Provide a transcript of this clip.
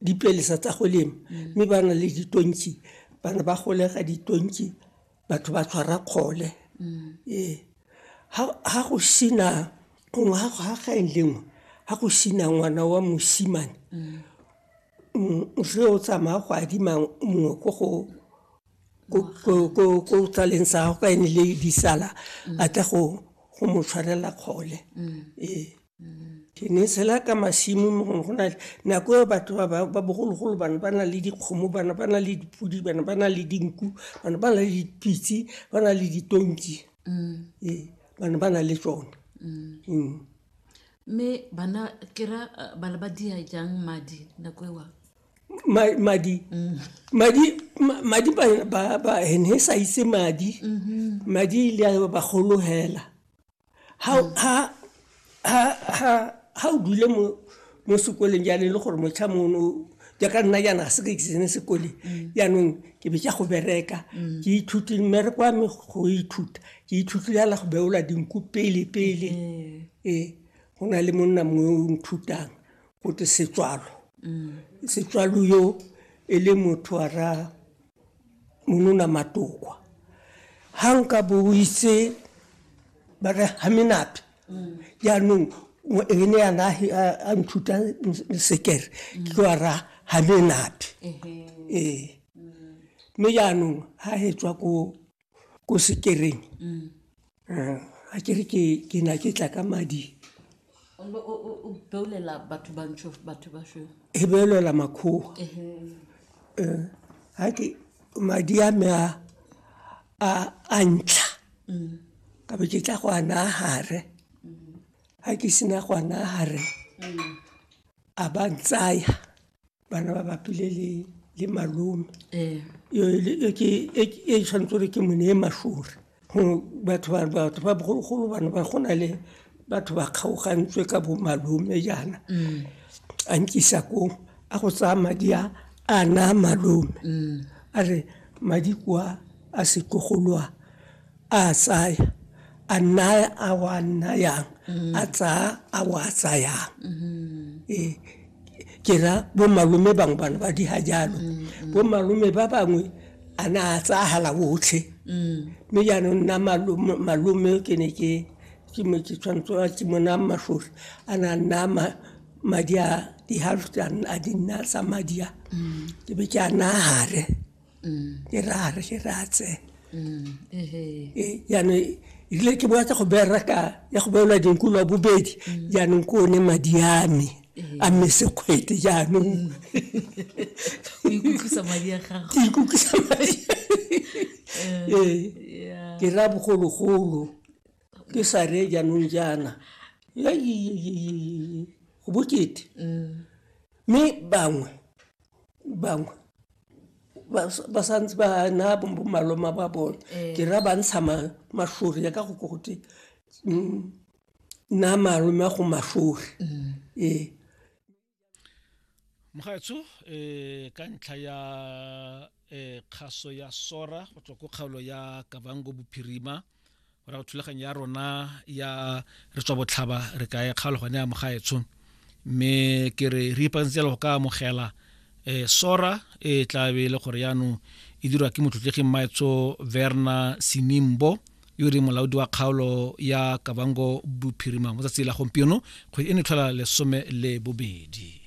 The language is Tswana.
dipelesa tsa go lema mme ba na le ditonki bana ba golega ditonki batho ba tshwara kgole ee ga go sena gongwe ga gaeng lengwe ga go sena ngwana wa mosimane re o tsamaya go adima mongwe ko go ko tsaleng sa gago ka ene le disala a tla go mo tshwarela kgole ee ke ne tshela ka masimo mo gongwe go na le nako eo batho ba ba bogologolo bana ba na le dikgomo bana ba na le dipodi bana ba na le dinku bana ba na le dipitse ba na le ditonki mm. ee bana ba na le tsone mm. Mm. mme bana kera eh, bana ba dia jang madi nako ewa madi madi madi ba ba ba ene sa itse madi mm-hmm. madi ile ba golo hela ha o dule mo mo sekoleng jaanong e le gore motlha mono jaaka nna jaana ga se ka kisene sekoleng jaanong ke be ke go bereka ke ithute mmereko wa me go ithuta ke ithute jala go beola dinku pele pele ee go na le monna mongwe o nthutang go te setswalo setswalo yo e le motho wa ra Monona Matokwa. Ha nka bo o itse ba re ha menate. Jaanong o- e ne yana a he- a a nthuta s- sekere ke tlo a ra ha menate. Ee. Mme jaanong ha he tswa koo ko sekereng mm. eh, a ke re ke na ke tla ka madi e beolela makgowa eh, ga ke madi a me a ntlha mm. ka be ke tla go a naya gare mm. ga ke sena go a naya gare a ba ntsaya bana ba bapile le le malome ee yo le- e ke e ke- e tshwanetse gore ke mone e mashore go batho ba batho ba bogologolo bana ba go na le batho ba kgaogantswe ka bo malome jaana a nkisa koo a go tsaya madi a a naa malome a re madi kwa a setlogolwa a tsaya a naya a wa nayang a tsaya a wa tsayang ee ke ra bo malome bangwe bana ba diga jalo bo malome ba bangwe a na a tsagala otlhe mme jaanong nna malome ke ne ke ke mo ke tshwanetse a ke mo naya matlhori a na a naya madi a di-half a di nna tsa madi a ke be ke a naya gare e re a re ke re a tse Eh, jaanong erile ke boa ka go berra ka ya go beelwa dinkolwa bobedi jaanong ke one madi a me a mme sekgwete jaanong o ikutlwisa madi a gago ke ikutlwisa madi ee Yeah. ke ra bogologolo ke sa re jaanong jaana Ya, yi, yi, yi, yi, yi. go bokete mme bangwe bangwe ba sa- ba santse ba na bo- bomaloma ba bone ke ra ba ntsha ma- mašori ya ka go ko gote na malome a go mašori ee mogaetsho um ka ntlha ya eh, kgaso ya sora go tswa ko kgaolo ya kavango bophirima go go thulaganyo ya rona ya re tswa botlhaba re ka e kgaolo gone ya mogaetsho mme ke re re ipakantsela go ka amogela um sora e tla be e le gore yaanong e dirwa ke motlotleging maetso verna sinimbo yo e molaodi wa kgaolo ya kabango bophirima mo tsatsi la gompieno kgwedi e ne tlhola lesome le bobedi